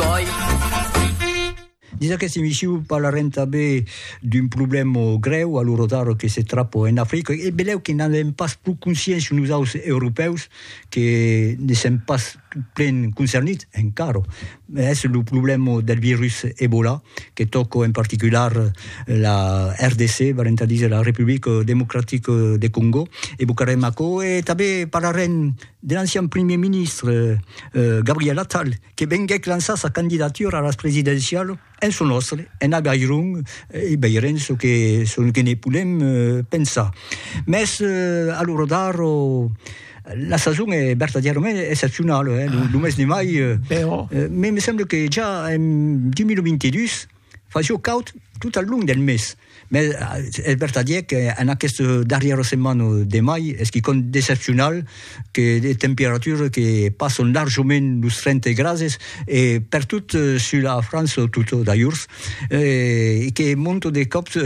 Bòi. Dins aqueste emissiu parlarem tanben d'un problèma grèu a lo rotaro que se trapa en Africa e benlèu que n'avèm pas pro consciéncia nosaus europèus que ne sèm pas plen concernits encara, es lo problèma del virus Ebola que tòca en particular la RDC, valent a díser la Republica Democratica de Còngo, evocarem aquò e tanben parlarem de l'ancian primièr ministre Gabriel Attal que venguèc lançar sa candidatura a las presidencialas en çò nòstre, en Avairon, e veirem çò que, çò que ne podem pensar. Mès, a lo rodar, la sason es vertadièrament excepcionala, eh, lo mes de mai, me semble que ja en 2022, Fa jo caud tot al long del mes, mès es vertadièr qu'en aquesta darrièra setmana de mai es quicòm d'excepcional que de temperatures que passan larjament los 30 grades e pertot sus la França tota d'ajorns e que monta de còps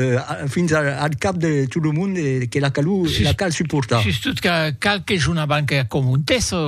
fins al cap de tot lo mond e que la calor la cal suportar. Sustot que cal que jo n'abanque a comentar çò.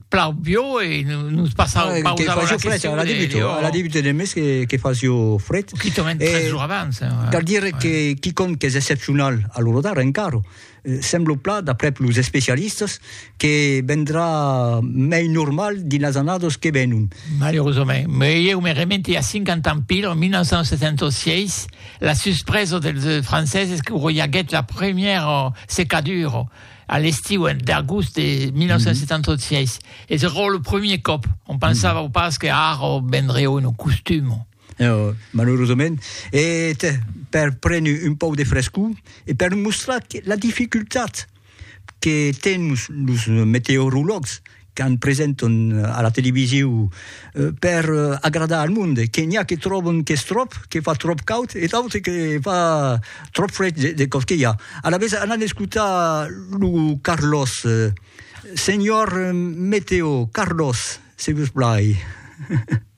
plau bio e nos passau ah, pausa a la fred, question. La débute, oh. la débute de mes que, que facio fred. Qui tomen eh, tres jours abans. Eh, ouais. Cal dire ouais. que quiconque que és excepcional a l'orodar encara, eh, sembla pla, d'après los especialistes, que vendrà mei normal dins las annadas que venon. Malheureusament. Mais eu me remente a 50 ans pil, en 1976, la suspresa dels franceses que roiaguèt la première secadura a l'estiu en d'agost de 1976 e se rò lo premier còp on pensava mm. pas que ara vendré un costum No, malheureusament. E per prendre un pauc de frescor e per mostrar la dificultat que tens los meteorologs qu'an presentan a la televisiu per agradar al monde, que n'i a que tròban qu'es tròp, que fa tròp caud e d'autres que fa tròp fred de còp que i a. Alavetz anan escotar lo Carlos. Senhor Meteo, Carlos, se vos plai.